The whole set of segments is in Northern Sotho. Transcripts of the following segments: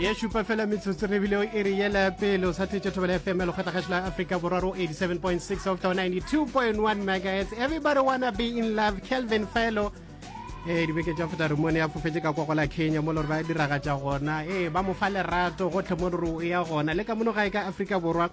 ye šupa fela metsotso re bile o e re yela pele o sa thetše thobela fm ya lekgotla gašo la africa borwa ro 87.6 of the 92.1 megahertz everybody wanna be in love kelvin felo ee eh, dibeke tša feta remone ya fofetse ka kwa gola kenya mo lore ba diragatša gona ee eh, ba mo fa lerato gotlhe mo lore o ya gona le ka mono gae ka africa borwa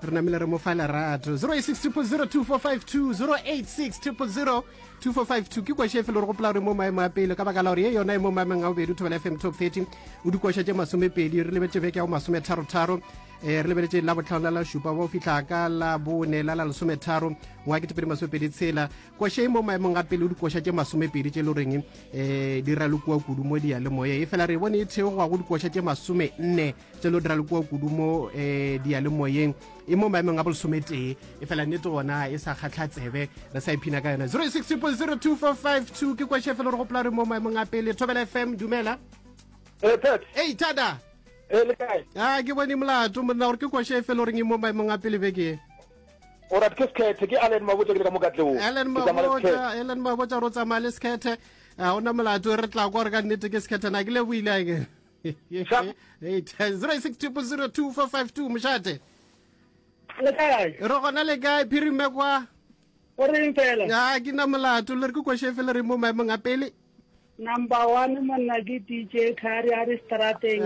re namile re mo fa lerato 0860002452 ke koša efe le re gopola gore mo maemo a pele ka baka la gore ye yona e mo maemong a bobedi thobela fm top 30 o dikoša tše masomepedi re lebetse beke ya go masometharotharo um eh, re lebeletse la botlhano la la šupa ba o fitlha ka la bone la la lesometharo ngwa ketepedi masomepedi tshela koša e mo maemong a pele o dikoša tše masomepedi tše e le goreng um eh, di ralokoa kudu mo diyalemoye e fela re e bone e theogoa go dikoša tše masome nne tse lo dira le kua kudu mo um diyalemoyeng e mo maemong a bolesometee e fela nnete gona e sa kgatlha tsebe re sa iphina ka yone 060245 ke kwešhe fela re gopola re mo maemong a pele thobela fm dumela ee eh, thada eh, a ah, ke bone molato monna gore ke kwešhe fela o reng e mo maemong a pele beke o rat ke sekhethe ke allen mabotsa ke le ka mokatleo allen mabotsa allen mabotsa ro tsamaya le sekhethe ga ona molato re tla kwa re ka nnete ke sekhethe na ke leboile ake 062 mošate le kae re gona le kae phirime kwa o reng fela ya ke na molato le re ke kwashefe le re mo maemong a pele number one monna ke dj kari a re strateng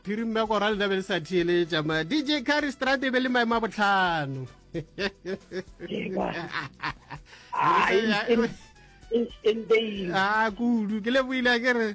phirime kwa ra lena be le sa theeletša ma dj kari strate be le maemo a botlhano a kudu ke le boile ke re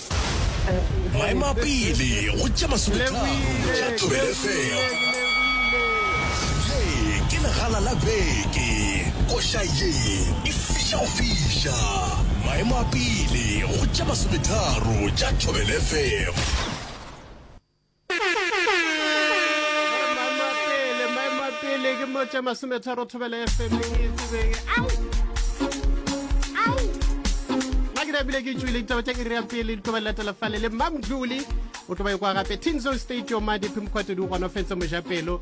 Maemapele go tša masometharo tša Thobela FM. Ye ke legala la beke. Koša ye e fiša go fiša. Maemapele go tša masometharo tša Thobela FM. pele ke mo tša masometharo thobela fm e tsebeng nna ke rabile ke tswile ditaba tša iri ya pele di tloba latela fale le mamdluli o tloba e kwa gape tinzo state yomadi phimokgwatedi o gonofetse mojapelo